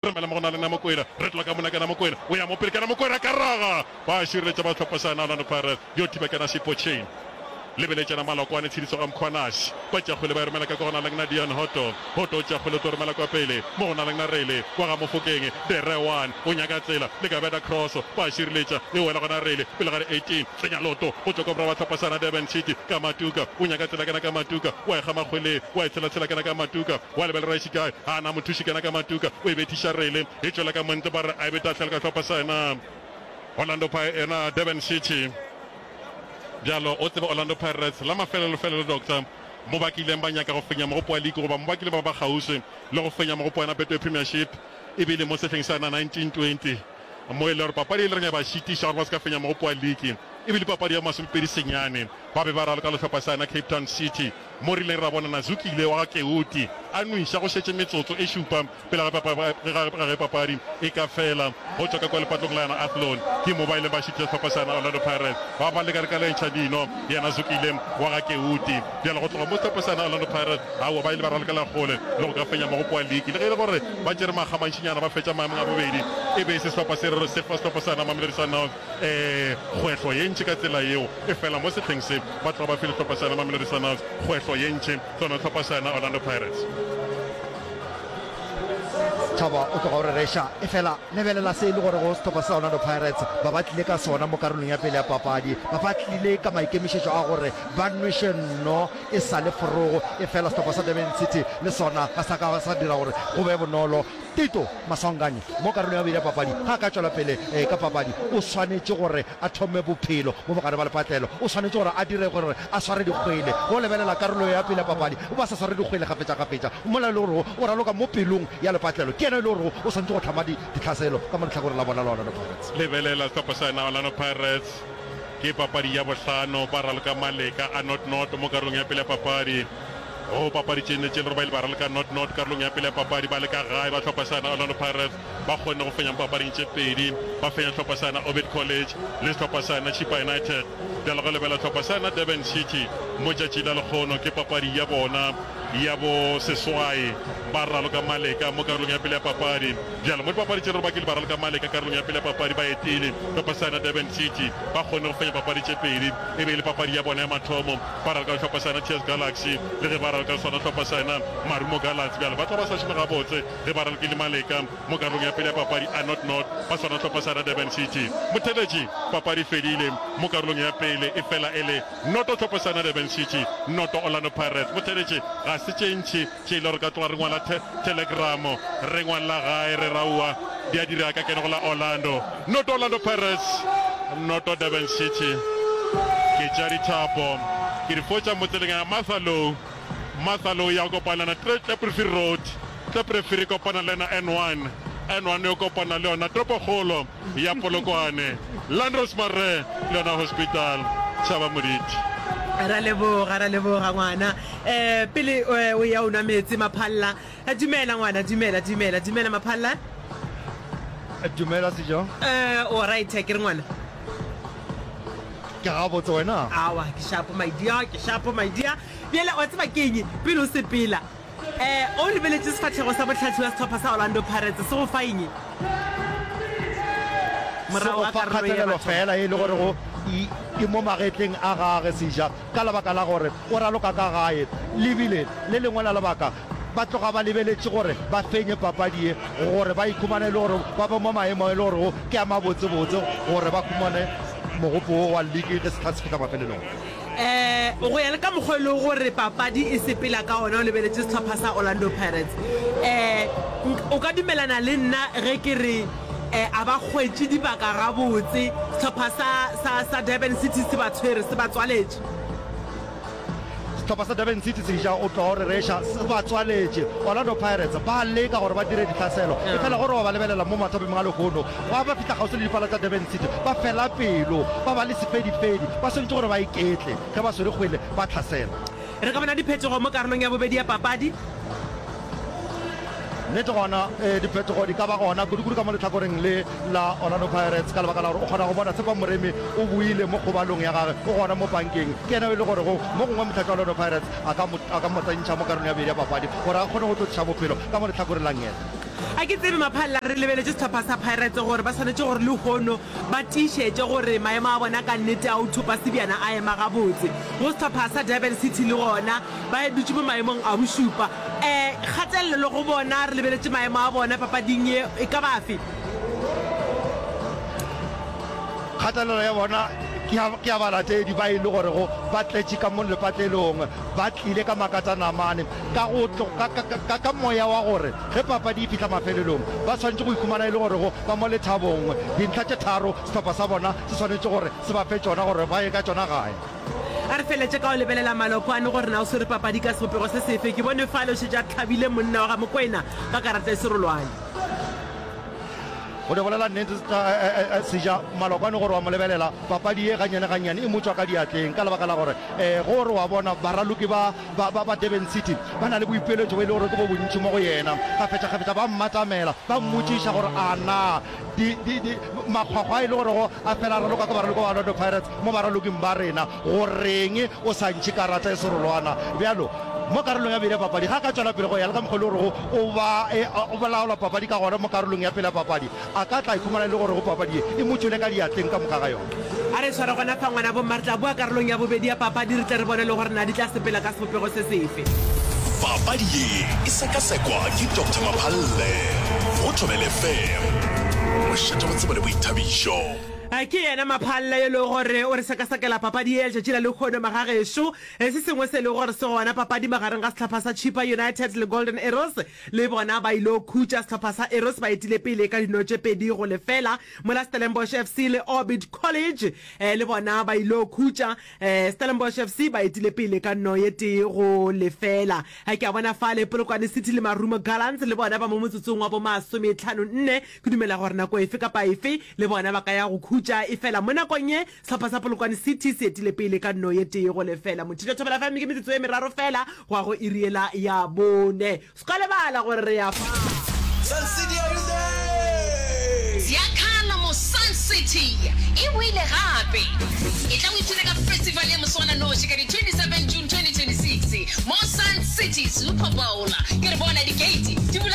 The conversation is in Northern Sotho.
Remela mo go na le Namokwena. Retloa ka mona ka Namokwena. O ya mo pele ka Namokwena ka raga. Ba šireletša ba hlopha sa Orlando Pirates. Yo thiba ka Nasi Pocheng. Lebeletšana Malokwane tshediso ga mokgwa Nasi. Ba tša kgwele ba e romela ka kwa go na leng Nadian Hoto. Hoto o tša kgwele o tlo romela kwa pele. Mo go na leng Narele. Kwa ga Mofokeng. De Re one o nyaka tsela. Le ka beta cross. Ba šireletša. E wela go Narele. Pele ga di eighteen. Tsenya loto. Go tšwa kwa morwa wa hlopha sa na Durban City. Ka Matuka. O nyaka tsela kena ka Matuka. Wa e kgama kgweleng. Wa e tshela tshela kena ka Matuka. Wa lebelera e se kae a na mothuši kena ka matuka o e bethiša rele e tšwela ka montle ba re a e beta fela ka hlopha sa ena Orlando Pi ena Durban City bjalo o tsebe Orlando Pirates la mafelelo felelo Doctor mo ba kileng ba nyaka go fenya mogopo wa league goba mo ba kileng ba ba kgauswi le go fenya mogopo wa ena Betway Premiership e bile mo sehleng sa ena 1920 mo e le gore papadi e le reng ya ba šitiša gore ba se ka fenya mogopo wa league e bile papadi ya masomepedi senyane ba be ba raloka le hlopha sa ena Cape Town City. mo re ilego ra bona Nazukile wa ga Keuti a nwiša go šetše metsotso e šupa pele ga ge papadi e ka fela. Go tšwa ka kua lepatlong la yona Athlone, ke mo ba ileng ba šitiša sehlopha sa yona Orlando Pirates ba ba leka leka le ntšha dino ya Nazukile wa ga Keuti. Bjale go tloga mo sehlopha sa yona Orlando Pirates aowa ba ile ba ralokela kgole le go ka fenya mo go kua liki le ge e le gore ba tšere makga mantšinyana ba fetša maemong a bobedi e be e se sehlopha se sehlopha sa yona Mamelodi Sundowns. Ee, kgwehlo ye ntši ka tsela yeo e fela mo sehleng se. Batho ga ba fe dihlopha sa yona Mamelodi Sundowns kgwehlo ye ntši, tlo no hlopha sa yona Orlando Pirates. Thabo o tloga o re reša, efela lebelela se e le gorego sehlopha sa Orlando Pirates ba ba tlile ka sona mo karolong ya pele ya papadi. Ba ba tlile ka maikemišetšo a gore ba nweše nno e sa le forogo, efela sehlopha sa Durban City le sona ga sa ka sa dira gore go be bonolo. Tito Maswanganyi mo karolong ya bobedi ya papadi ga a ka tšwela pele ka papadi, o swanetše gore a thome bophelo mo bogare ba lepatlelo. O swanetše gore a dire gore a sware dikgwele. Go lebelela karolo ya pele ya papadi o be a sa sware dikgwele kgafetšakgafetša, mola e le gorego o raloka mo pelong ya lepatlelo, ke yena e le gorego o swanetše go hlama ditlhaselo ka mo lehlakoreng la bona la Orlando Pirates. Lebelela sehlopha sena, Orlando Pirates, ke papadi ya bohlano ba raloka maleka a not-not mo karolong ya pele ya papadi. Go papadi tše nne tše le Rubaile ba raleka not not karolong ya pele ya papadi ba le ka gae ba hlopha sa na Orlando Pirates ba kgonne go fenya mo papading tše pedi ba fenya hlopha sa na Ovid College le hlopha sa na Chippa United bja le go lebela hlopha sa na Durban City mo tšatši la lekgono ke papadi ya bona ya bo seswai ba raloka maleka mo karolong ya pele ya papadi bjale mo dipapadi tše le Rubakile ba raloka maleka karolong ya pele ya papadi ba etile hlopha sa na Durban City ba kgonne go fenya papadi tše pedi e be e le papadi ya bona ya mathomo Ba ralka hlopha sa yena TS Galaxy le ge ba ralka le sona hlopha sa yena Marumo Gallants. Bjale ba tla ba sa šome gabotse ge ba ralkile maleka mo karolong ya pele ya papadi a not not ba sona hlopha sa yena Durban City. Motheletši, Papadi e fedile mo karolong ya pele e fela e le noto hlopha sa yena Durban City noto Orlando Pirates. Motheletši, Ga se tše ntši. Tšeile re ka tloga re ngwala the, thelegramo, re ngwalela gae, re ra oa, di a dira ka kene go la Orlando. Noto Orlando Pirates, noto Durban City. Ke tša dithapo, ke di fotša motseleng ya Mathalou. Mathalou ya kopana na Tre, Tleprefiri Road, Tleprefiri e kopana le yena N1, N1 e kopana le yona toropokgolo. ya Polokwane, Landros Marre le yona Hospital Tšhaba Moditi. Ra leboga, ra leboga ngwana. Eh, pele eh, o ya o nwa metsi Maphalla. Eh, dumela ngwana, dumela, dumela, dumela Maphalla. Dumela Sejo. Eh, o right ke re ngwana. Ke ga botse wena. Awa, ke shapo my dear, ke shapo my dear. Bjale wa tseba keng pele o sepela. E, o lebeletše sefahlego sa bohlatsi wa sehlopha sa Orlando Pirates se go fa eng? Se Morago go ga fa karolo ye ya kgatelelo batho. fela ye e le gore go e e mo magetleng a gage seja ka lebaka la gore o raloka ka gae. Le bile le lengwe la lebaka ba tloga ba lebeletše gore ba fenye papadi ye gore ba ikhumane e le gore ba be mo maemo a e le gorego ke a mabotsebotse gore ba khumane mogopo wo wa league ge sehla se fihla mafelelong. um go ya le ka mokgwa e lego gore papadi e sepela ka ona o lebeletše setlhopha sa orlando pirates um o ka dumelana le nna ge ke re um a ba kgwetše dibaka gabotse setlhopha sa durban city se ba tshwere se ba tswaletše setlhopha sa durban city seja o tlo re reša se ba tswaletše orlando pirates ba leka gore ba dire ditlhaselo e fela gore wa ba lebelela mo mathopeng ga lehono Gwa ba fihla kgauswi le dipala tša Durban City, ba fela pelo, ba ba le sefedifedi, ba swanetše gore ba iketle ge ba swere kgwele ba hlasela. Re ka bona diphetogo mo karolong ya bobedi ya papadi. Nnete gona, ee, diphetogo di ka ba gona, kudukudu ka mo lehlakoreng le la Orlando Pirates, ka lebaka la gore o kgona go bona Tshepang Moremi o boile mo kgobalong ya gage, o gona mo pankeng. Ke yena yo e le gorego mo gongwe mohlatswa wa Orlando Pirates a ka mo, a ka mo tsentšha mo karolong ya bobedi ya papadi gore a kgone go tlo tliša bophelo ka mo lehlakoreng la Ngeta. A ke tsebe maphalela re lebeletše sehlopha sa Pirates gore ba swanetše gore lehono ba tiišetše gore maemo a bona ka nnete a ho thopa sebjana a ema gabotse. Go sehlopha sa Durban City le gona ba dutše mo maemong a bošupa. Um kgatelelo go bona re lebeletše maemo a bona papading ye e ka ba afe? Kgatelelo ya bona ke ya ke ya balatedi ba e le gorego ba tletše ka mo lepatlelong, ba tlile ka makatanamane ka go tlo, ka, ka, ka, ka, ka moya wa gore ge papadi e fihla mafelelong ba swanetše go ikhumana e le gorego ba mo lethabong. Dintlha tše tharo sehlopha sa bona se swanetše gore se ba fe tšona gore ba ye ka tšona gae. A re feletše ka go lebelela Maloko a no gore na o swere papadi ka sebopego se sefe. Ke bone fale o šetše a hlabile monna wa ga Mokwena ka karata e serolwane. Go di bolela nnete, sa, e, e, e, e, Seja, Maloko a no gore wa mo lebelela, papadi ye gannyane-gannyane e mo tšwa ka diatleng ka lebaka la gore, ee, ge o re wa bona, baraloki ba Ba ba ba Durban City ba na le boipiletšo bo e le gore ke bo bontši mo go yena. Kgafetšakgafetša ba mmatamela ba mmotšiša gore a na di, di, di, makgwakgwa a e le gorego a fela a raloka ke baraloki ba Orlando Pirates mo baraloking ba rena, go reng o sa ntšhe karata e serolwana bjalo mo karolong ya bobedi ya papadi. Ge a ka tšwela pele go ya le ka mokgwa o e le gorego o ba, e, o laola papadi ka gona mo karolong ya pele ya papadi, A ka tla ikhumana e le gore go papadi ye e mo tšwele ka diatleng ka moka ga yona? A re tshware gona fa ngwana bo mma re tla boa karolong ya bobedi ya papadi re tle re bone le gore na di tla sepela ka sebopego se sefe. Papadi ye e sekasekwa ke Doctor Maphalle go Thobela FM. Mošate go tsebo le boithabišo. Ke yena Maphalle yo e lego gore o re sekasekela papadi ye ya letšatši la lehono magagešo. Se sengwe se e lego gore se gona papading magareng ga sehlapha sa Chippa United le Golden Arrows, Le bona ba il'o khutša sehlopha sa Arrows ba etile pele ka dino tše pedi go lefela, mola Stellenbosch FC le Orbit College le bona ba il'o khutša. Stellenbosch FC ba etile pele ka no ye tee go lefela. Ke a bona fale Polokwane City le Marumo Gallants le bona ba mo motsotsong wa bo masometlhano-nne. Ke dumela gore nako efe kapa efe le bona ba ka ya go khutša, efela mo nakong ye Sehlopha sa Polokwane City se etile pele ka nno ye tee go lefela Mothiša Thobela FM ke metsotso ye meraro fela go ya go iri yela ya bone. Se ka lebala gore re ya fa. Sun City are you there? Zya kala mo Sun City e boile gape. E tla o ithuta ka festival ya moswananoši ka di 27 June 2026 mo Sun City Super Bowl. Ke re bona di gate di bula.